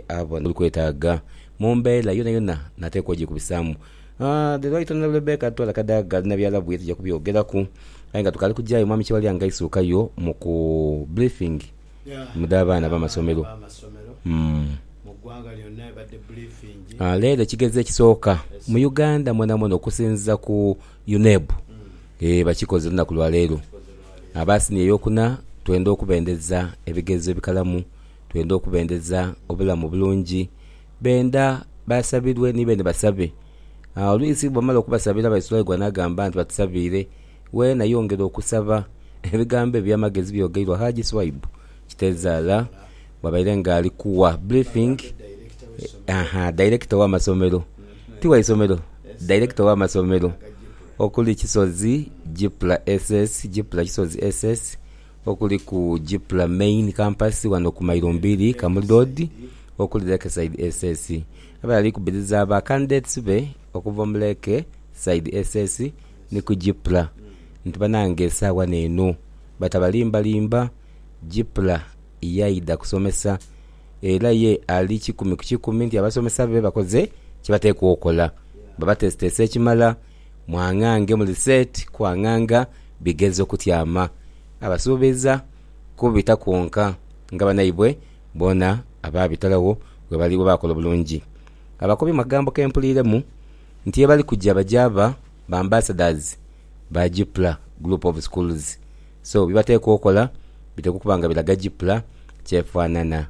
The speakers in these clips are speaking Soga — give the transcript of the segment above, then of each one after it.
abo ni kwetaaga mu mbeera yonayona nateekwa ogyekubisaamu the right honourable Rebecca Twala Kadaga ali na byalab ye tuja kubyogeraku aye nga tukaali kugya ayo Mwami Kyebalya nga aisuukayo mu ku briefing mu dha baana b'amasomero Leero ekigezo ekisooka mu Uganda mwonamwona okusinziza ku UNEB eeh bakikoze olunaku lwa leero aba siniya eyokuna twenda okubendeza ebigezo ebikalamu twenda okubendeza obulamu obulungi, benda basabirwe ni beene basabe. Oluisi bwamala okubasabira Baisuraigwa n'agamba nti, Batusabiire, weena yongera okusaba. Ebigambo eby'amagezi byogeirwa Haji Swaibu Kitezaala bwabaire nga ali kuwa briefing Director ow'amasomero, ti wa isomero, Director ow'amasomero okuli Kisozi Gipla SS, Gipla Kisozi SS, okuli ku Gipler Main Campus ghano ku Mailo Mbiri, Kamuli Road, okuli Lakeside SS. Abaire ali kubiriza ba candidates be okuva mu Lake side SS ni ku Gipler nti banange saawa neeno batabalimbalimba, Gipler yaidha kusomesa era ye ali kikumi ku kikumi nti abasomesa be bakoze kyebateekwa okola, babatesitese ekimala. Mwang'ange muli set kwang'anga bigezo kutyama. Abasuubiza kubita kwonka nga banaibwe boona abaabitalawo webali bwe baakola obulungi. Abakobi mu kagambo ke mpuliiremu nti ye bali kuja bajaaba ba ambassadors ba GPLA group of schools so bye bateekwa okola biteekwa okuba nga biraga GPLA ky'efaanana.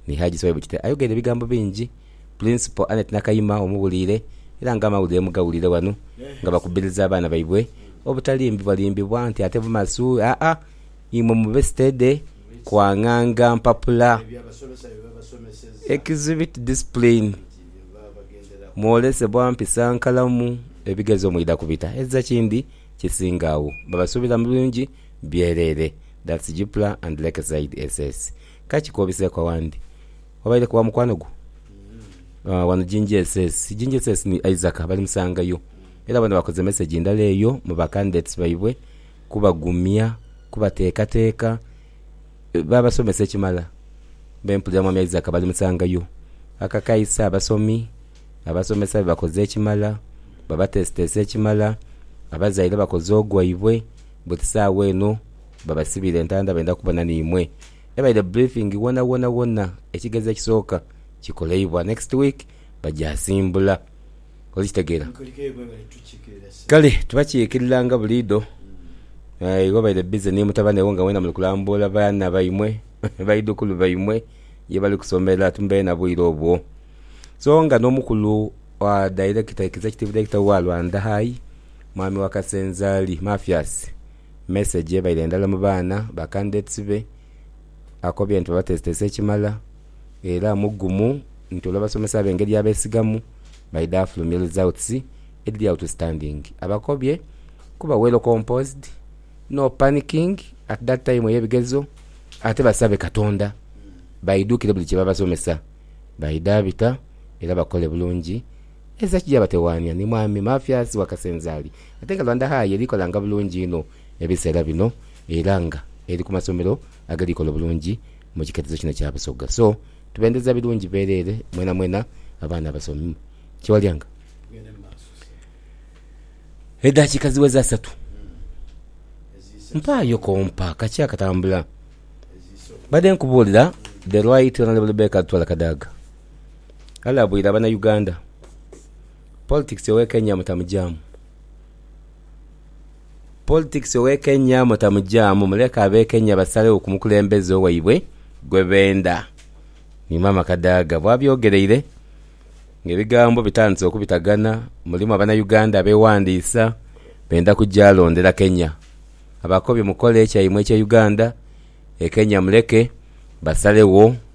Ni Haji Swaibu Kite ayogeire ebigambo bingi. Pulinsipo Annet Nakayima omuwuliire era nga amawulire mugawulire wano nga bakubiriza abaana baibwe obutalimbibwalimbibwa nti ate bumasu aa imwe mube sitede kwang'anga mpapula exhibit discipline mwolesebwa mpisa nkalamu ebigezo mwidha kubita ezira kindi kisinga agho babasuubira mu bingi byereere That's Gpla and Lakeside SS. Ka kikobiseeku awandi. Wabaire ku wa mukwano gwo? Wano Jinja SS. Jinja SS ni Isaac balimusangayo. Era bona bakoze mesegi ndala eyo mu ba candidates baibwe kubagumya, kubateekateeka. Baabasomesa ekimala. Mbe mpulira Mwami Isaac balimusangayo. Akakaisa abasomi, abasomesa be bakoze ekimala, babateesiteesa ekimala. Abazaire bakoze ogwaibwe. Buti saawa eno. Babasibire entanda benda kubona nimwe. Ebaire briefing wona wona wona ekigezo ekisooka kikoleibwa next week bagyasimbula. Olikitegera? Kale tubakyikirira nga buliidho. Aye wabaire busy ni mutabane wo nga mwena muli kulambuula baana baimwe, baidhukulu baimwe ye bali kusomera timubaire na bwire obwo. So nga n'omukulu director, executive director wa Lwanda High, Mwami Wakasenzaali Mathias, Message ebaire ndala mu baana ba candidates be, akobye nti babateeseteese ekimala era mugumu nti olw'abasomesa be engeri y'abesigamu baidha afulumya results edhiri outstanding. Abakobye kuba well composed, no panicking at that time ey'ebigezo ate basabe Katonda baidhukire buli kye babasomesa baidha bita era bakole bulungi. Ensi ekija batewaania ni Mwami Mafias Wakasenzaali ate nga Rwanda High eri kolanga bulungi inho ebiseera bino era nga eri ku masomero ageri kola obulungi mu kiketezo kino kya Busoga so tubendeza birungi bwerere mwenamwena abaana abasomi Kyewalyanga Edaakiika ziweze asatu mpaayo kompa kaki akatambula Mbadde nkubuulira The Right Honourable Baker Lutwala Kadaga. Alabwire abana Uganda, Politics owe Kenya mutamugyamu Politics owe Kenya mutamugyamu muleke abe Kenya basalegho ku mukulembeze owaibwe gwe benda ni Maama Kadaga bwabyogereire nga ebigambo bitandise okubitagana mulimu abana Uganda abewandiisa benda kugya londera Kenya Abakobi mukole kyaimwe ekye Uganda e Kenya muleke basalegho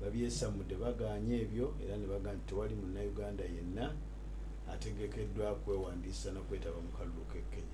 babyesamude bagaanye ebyo era ni baga nti tewali Munnauganda yenna ategekeddwa kwewandiisa na kwetaba mu kalulu k'e Kenya.